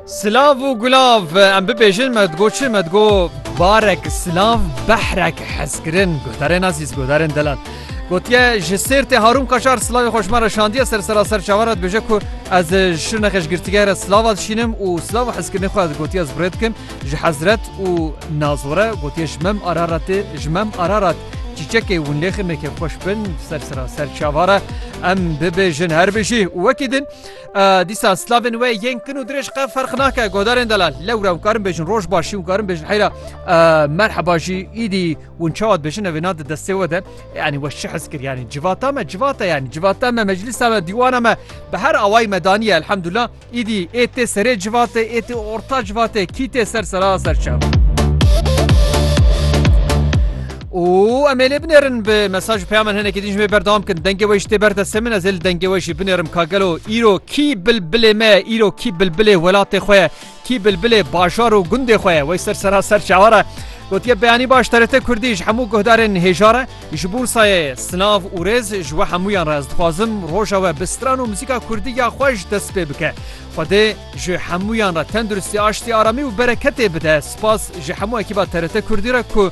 Silav û gulav em bibêjin me digo çi me digo barek silav behrek hezkirin guhdarên azîz guhdarên delal. Gotiye ji sêrtê Harûn Kaşar silavê xweşma re şandiye ser sera ser çavar re dibêje ku ez ji nexeş girtîgeh re silava dişînim û silav û hezkirinê xwe ez gotiye ez birê dikim ji hezret û nazore gotiye ji mem araratê ji mem ararat çîçekê hûn lêxin neke xweş bin ser sera ser çavara em bibêjin her bijî û wekî din Dîsa slavên wê yên kin û dirêj qe ferq nake godarên delal lewra hûn karin bêjin roj başî hûn karin bêjin heyra merheba jî îdî hûn çawa dibêjin evê na di destê we de yanî we şi hez kir yanî civata me civata yanî civata me meclisa me dîwana me bi her awayî me daniye elhemdullah îdî ê tê serê civatê ê tê orta civatê kî tê ser sera ser çav. Û em ê lê binêrin bi mesaj û peyamen hinekî din ji wê berdewam bikin. Dengê wê jî tê ber destê min ez ê li dengê wê jî binêrim ka gelo îro kî bilbilê me ye, îro kî bilbilê welatê xwe ye, kî bilbilê bajar û gundê xwe ye. Wey ser sera ser çawan e. Gotiye beyanî baş TRT Kurdî ji hemû guhdarên hêjar e. Ji bo sayê sinav û rêz ji we hemûyan re ez dixwazim roja we bi stran û muzîka kurdî ya xweş dest pê bike. Xwedê ji hemûyan re tenduristî, aştî, aramî û bereketê bide. Spas ji hemû ekîba TRT Kurdî re ku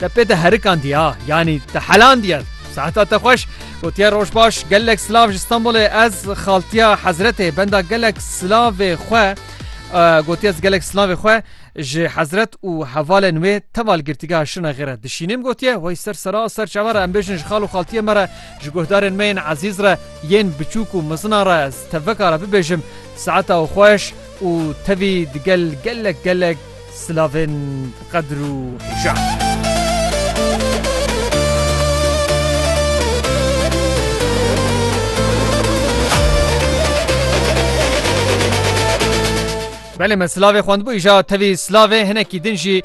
Te pê te herikandiya yanî te helandiye. Seheta te xweş gotiye roj baş gelek silav ji Stenbolê ez xaltiya hezretê benda gelek silavê xwe gotiye ez gelek silavê xwe ji hezret û hevalên wê teval girtîgeha şinexê re dişînim gotiye wey ser sera ser çava re em bêjin ji xal û xaltiye me re ji guhdarên me yên ezîz re yên biçûk û mizina re ez tevekara bibêjim seheta û xweş û tevî digel gelek gelek Silavên qedir û şan. Belê me silavê xwendbû îja tevî silavê hinekî din jî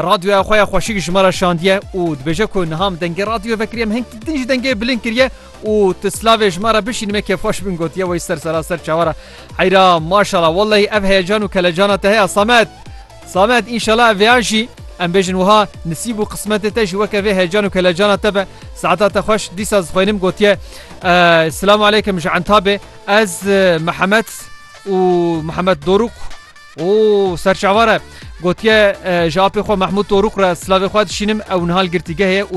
radyoya xwe ya xweşik ji me re şandiye û dibêje ku niha min dengê radyo vekiriye min hinkî din jî dengê bilind kiriye û tu silavê ji me re bişîn me kêfxweş bin gotiye wê ser serasser çawa re Heyra maşala wellehî ev heyecan û kelecana te heye Samet. Samet înşela ev vêyan jî em bêjin wiha nisîb û qismetê te jî weke vê heyecan û kelecana te be. Saeta te xweş dîsa zixwênim gotiye Silamu aleykim ji Entabê ez Mihemed û Mihemed Dorûk û serçavare gotiye ji apê xwe Mehmûd Dorûk re silavê xwe dişînim ew nihal girtîgehê û